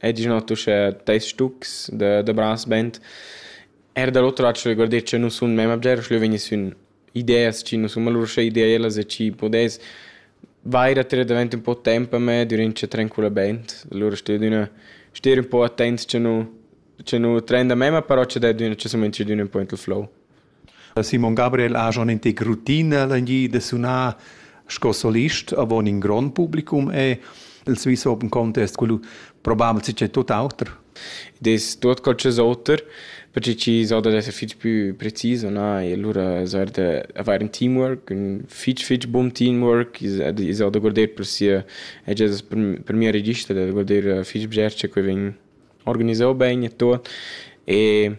E diciamo tu sche teis stucs da da brass band. Er da l'oter lac sche guardier cha nus sun memma bger, sche leu vegniss ün ideas chi nus sun, alura sche ideelas e chi pudess vair a tirer davent ün po temp a me dürant cha trencula band. Alura stè adüna stè ün po attent cha nu cha nu tren da memma, però cha dad üna cha sumuentscha d'üna ün po int il flow. E Simon Gabriel ha schon in tic rutina langì da sunar sco solist avon in grond publicum e el svis open contest quello probabel si c'è tut auter. Des tuot qualches oter, perché chi so da esser fich più preciso, na? E allura soll da avere ein teamwork, un fich fich buon teamwork, ich so da guarder per sia è già per mia regista da guarder fich bger che vegn organisau bene e tot e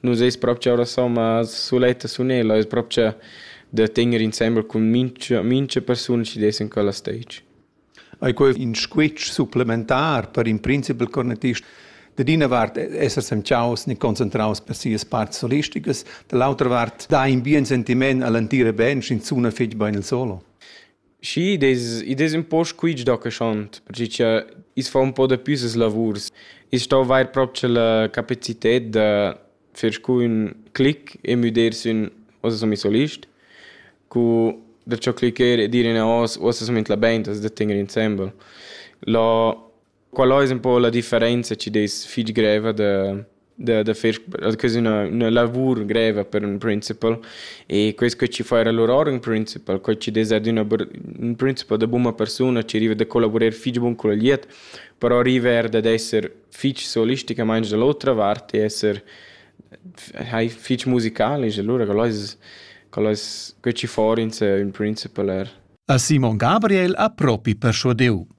Nus eis propcha ora somma suletta sunella, eis propcha da tegner insembel cun mincha mincha persuna chi dess in quella stage. Ei quei in squitsch supplementar per in principal cornetist? Da d'ina vart esser semciaus ni concentraus per sias parts solistigas, dall'autra vart dai in bien sentiment all'entira band in zuna fetg bein il solo. Schi, id es id es ün po squitsch da caschond, perche cha i's fa ün po dapü ses lavurs. I's sto avair propcha la capacited da fer scun clic e müder sün uossa sun miss solist cu da cho clicher e dir üna hoz uossa sun minchla bain, as da tegner insembel. Lo Quella ais ün po la differenza chi dess fich greva da da da fer quasi üna üna lavur greva per ün principal e quest co chi fa era lur or ün principal, co chi dess adüna ün principal da buna persuna chi riva da collavurer fich bun culla glieud, però riva eir dad esser fich solisticamaing da l'otra vart e esser hai fich musicalisch, alura quel ais quel ais co chi fa our ün principal eir. A Simon Gabriel ha propi perschuadiu.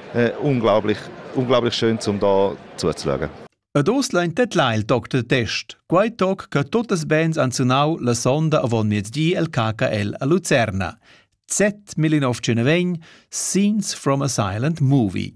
äh, unglaublich, unglaublich schön, um da zuzuschauen. Ed oz lein tedlar il toc de test, quei toc che totes bands han sunau la sonda avon miezdi el KKL a Lucerna. Z1920 Scenes from a Silent Movie.